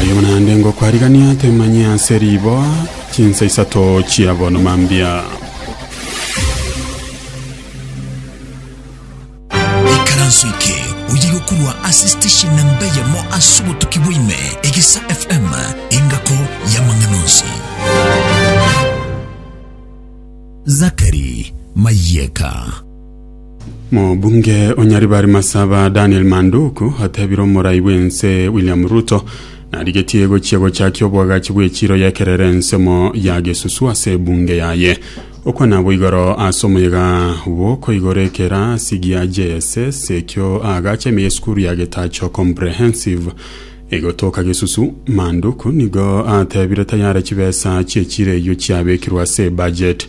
Ayio naende ngokwarigania temanye ase riboa chinsa isato chia bono mambia. Ikaranso eke oye gokorwa ase station na mbe yamo ase obotuki bwa ime egesa FM engako y'amang'ana onsi. Zachary Mayeka. Mobunge o Nyaribari Masaba Daniel Manduku atebire omorai bw'ense William Ruto narigetie gochia gochakia obwagachi bw'echiro y'ekerero ensemo ya gesusu ase ebunge yaye. Okwo nabo igoro ase omoyega bw'okoigora ekera ase gia JSS ekio aagache ime y'esukuru ya Getacho Comprehensive egotoka gesusu. Manduku nigo atebire tayare chibesa chi'echiro eyio chiabekirwe ase ebudget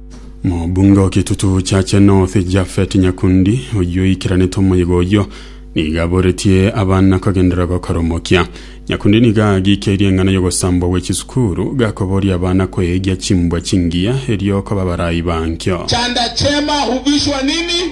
Mobunge o Kitutu Chache North, Japhet Nyakundi, oyio oikeranete omoyega oyio, niga aboretie abana kogenderera gokora omokia. Nyakundi niga agikeirie eng'ana y'ogosambwa gwe chisukuru, gakoboria abana koeegia chimbwa chingiya erio koba abarai bankio. Chanda chema huvishwa nini?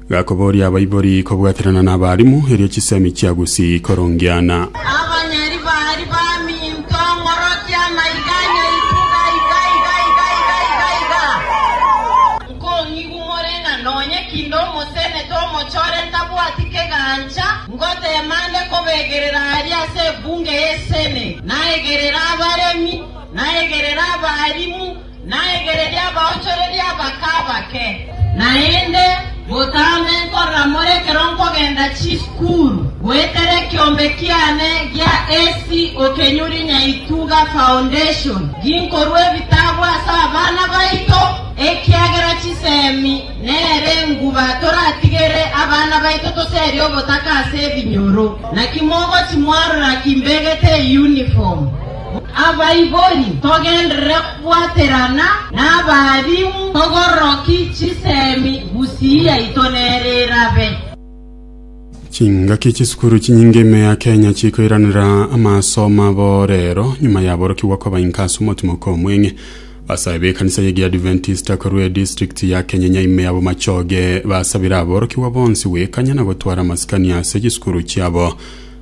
Gakoboria abaibori kobwaterana nabarimu, erio chisemi chia gusii korongiana. Abanyari baari baminto ng'oroki amaiga anya ituga iga iga iga iga iga iga. Nkong'igu more ng'a nonye kinde omoseneta omochore ntabwati kegancha, ngoteema nde kobegerera aria ase ebunge y'eseneti, naegerere abaremi, naegerere abarimu, Naegereria abaonchoreria abake abake. Naende botambe nkorora more ekero nkogenda chisukuru, goetera ekeombe kiane gia AC Okenyuri Nyaituga Foundation ginkorua ebitabu ase abana baito, ekiagera chisemi nere enguba toratigere abana baito toseria obotaka ase ebinyoro. Naki mogochi mwarora kimbegete euniform? Abaibori, togenderere kobwaterana nabaalimu, togoroki chisemi, gusii yaito nere erabe. Chingaki chisukuru chinyinge ime ya Kenya chikoiranera amasomo abo rero nyuma yaborokigwa kw'abainka ase omotimoko omweng'e. Basae b'ekanisa ye Giadventista korwa edistrict ya Kenyenya ime ya Bomachoge basabire aborokigwa bonsi goikanya na gotwara amasikani ase chisukuru chiabo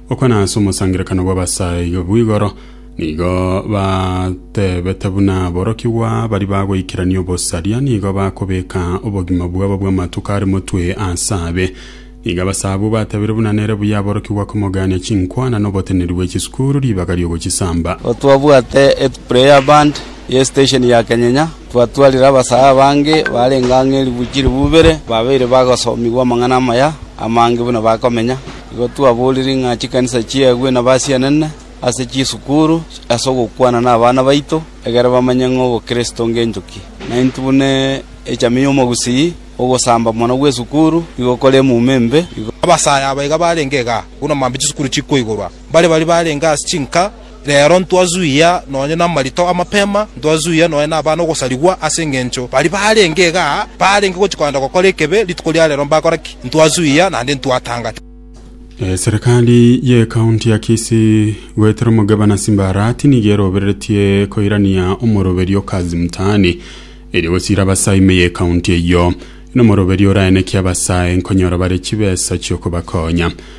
Okwo nase omosangererekano bw'abasaai bw'igoro, nigo bateebete buna aborokigwa baria bagoikerania obosaria nigo bakobeeka obogima bwabo bw'amatuko are motwe ase abe. Nigo abasaai abwo bateebire buna nere buya aborokigwa komogania chinkwana na oboteneneri bwe chisukuru ribaga ri'ogochisamba. Igo twabwate eprayer band ye station ya Kenyenya, twatwarire abasaai abange barenge ang'e eribuchi ribu ibere, babeire bagosomigwa amang'ana amaya amange buna bakomenya. Igo twaboorire ng'a chikanisa chiegwe na basianane ase chisukuru ase ogokwana nabana baito, egere bamanye ng'a obokristo ng'enchoki. Na intwe buna echami y'omogusii ogosamba mono bw'esukuru igokora emuma embe, abasae abaiga barenge igaa buna mambia chisukuru chikoigorwa, mbare baria barenge ase chinka. Reero ntwazuia nonya namarito amapema, ntwazuia nonya nabana ogosarigwa, ase engencho baria barenge iga barenge gochia kogenda gokora ekebe rituko ria reero mbakora ki? Ntwazuia naende ntwatanga. Eserekari y'ekaunti ya Kisii goetera omogeba Nassim Baharat nigo erobereretie koirania omoroberio o Kazi Mtaani erio gosiira abasae ime y'ekaunti eyio. Nomoroberio oraenekie abasae nkonyora bare chibesa chi'okobakonya.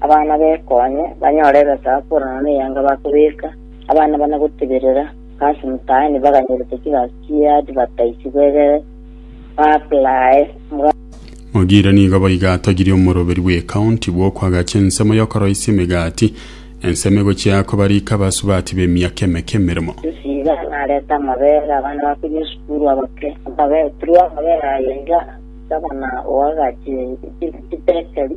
Abana bekonye banyore egesaku korana neyanga bakobeka, abana bane gotiberera ase mtaani baganyerete chigasi chie advertise bwegere baaplae mwa Mogire nigo boiga atogirie omoroberi bw'ecounty bw'okoagacha ensemo y'okoroisia emegati, ensemo egochia kobarika abasubati b'emiaka emeke emeremo. Tisiga narete amabere abana bakorwa esukuru abake, amabere, turu amabere aye iga, gabana oagache chibekeri.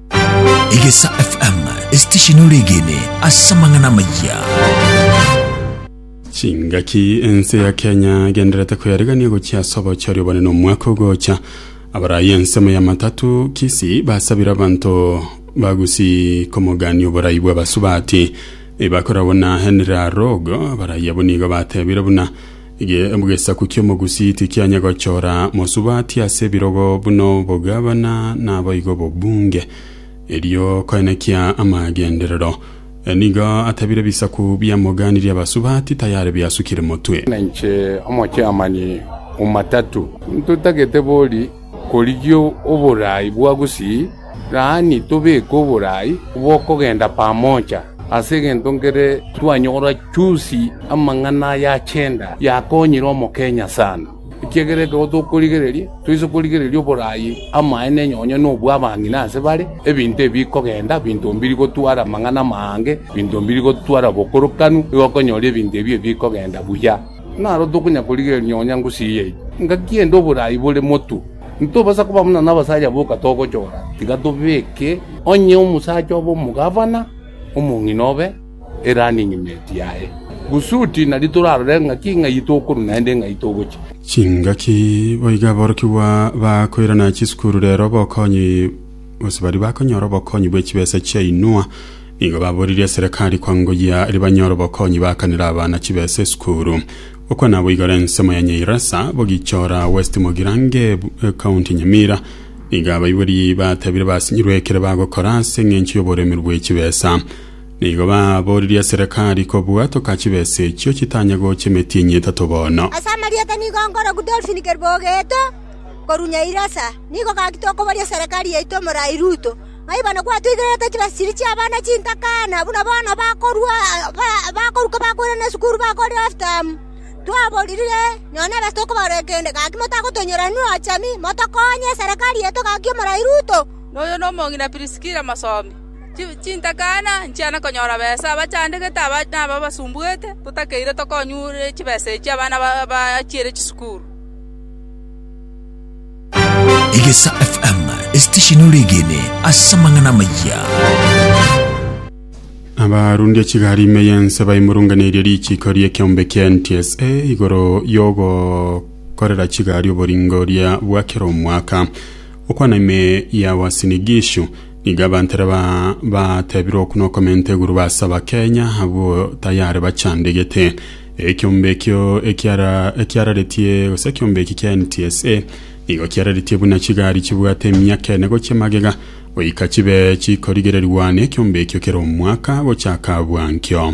Egesa FM, esitesheni oregene ase amang'ana amayia. chingaki ense ya kenya genderete koyaregania gochia ase oboche oria obonene omwaka ogocha abarayi ensemo ya matatu kisi basabire abanto bagusi komogania oborayi bw'abasubati ebi bakora buna henry arog abarayi abo nigo batebire buna Egesaku ki'omogusi tikianya gochora mosubati ase ebirogo buna obogavana na boigo obobunge. Erio koenekia amagenderero. Nigo atabire ebisaku biamogaanirie abasubati, tayari biasukire motwe. Ninche omochaamani o matatu. Ntotagete bori. Korigia oboraai bwa gusii, Rani tobeke oboraai bw'okogenda pamoja, ase egento nkere twanyora chionsi amang'ana aya achenda yakonyire Omokenya sana. Ekiagera ekero tokorigereria, toise korigereria oboraai amaene nonya nobw'abang'ina ase bare, ebinto ebi bikogenda, binto mbiri gotwara amang'ana amaange, binto mbiri gotwara bokorokanu, igo okonyora ebinto ebi bikogenda buya. Naro tokonya korigereria nonya ngusi eye, engaki ende oboraai bore motu. Ntitobasa koba buna nabasacha boka togochora, tiga tobeke onye omosacha obe omogavana, omong'ina obe erunning mate yaye. Gusudi nario torarore engaki ng'ai tokorwa naende ng'ai togochia. Chingaki boiga aborokigwa ba koirana chisukuru rero obokonyi, gose baria bakonyora obokonyi bwe chibesa chiainwa. Nigo baboririe eserekari kongoyia eri banyore obokonyi baakanere abana chibesa esukuru. Okwo nabo igoro ensemo ya Nyairesa, Bogichora West Mogirange, County Nyamira, nigo abaibori batebire basinyirwe ekere bagokora ase eng'encho y'oboremiri bwe chibesa. Nigo baboririe eserekari kobua toka chibesa echio chitanya gocha emetienyi etato bono. Ase amarieta nigo nkoroku Dolphin Kerubo Geto korwa Nyairesa. Nigo gaki tokoboria serekari yaito omorai Ruto. Aye bana gwatoigererete chibasiri chi'abana chintaka, na buna bono bakorua bakoruka bakoirana nesukuru bakore half-term. Twaboririre nonya nebesa tokobaroria kende, gaki motagotonyora inwe ochami, motokonye eserekari yaito gaki Omorai Ruto. Noyo nomong'ina Priskila mosomi. Chintaka ana nchiana konyora besa, abachandegete aba nabo abasumbuete, totakeire tokonyure chibesa echio abana bachiere chisukuru. Egesa FM, esitesheni oregene ase amang'ana amayia. abarundia chigari ime yense baimurunganeirie richiko riekeombe kia ntsa igoro yogokorera chigari oboringo ria bwa kera omwaka okwana ime ya wasinigishu Iga abantere ba batebire oku nokomenta eguru basaba Kenya abwo tayari bachandegete ekiombe ekio ekiara ekiararetie gose ekiombe eki kia NTSA nigo kiararetie buna chigari chibwate emiaka ene gochia magega goika chibe chikorigererigwa ne ekiombe ekio kero omwaka gochaka bwankio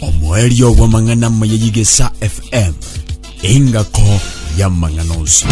omoerio bw'amang'ana amaya y'Igesa FM, engako y'amang'ana onsi.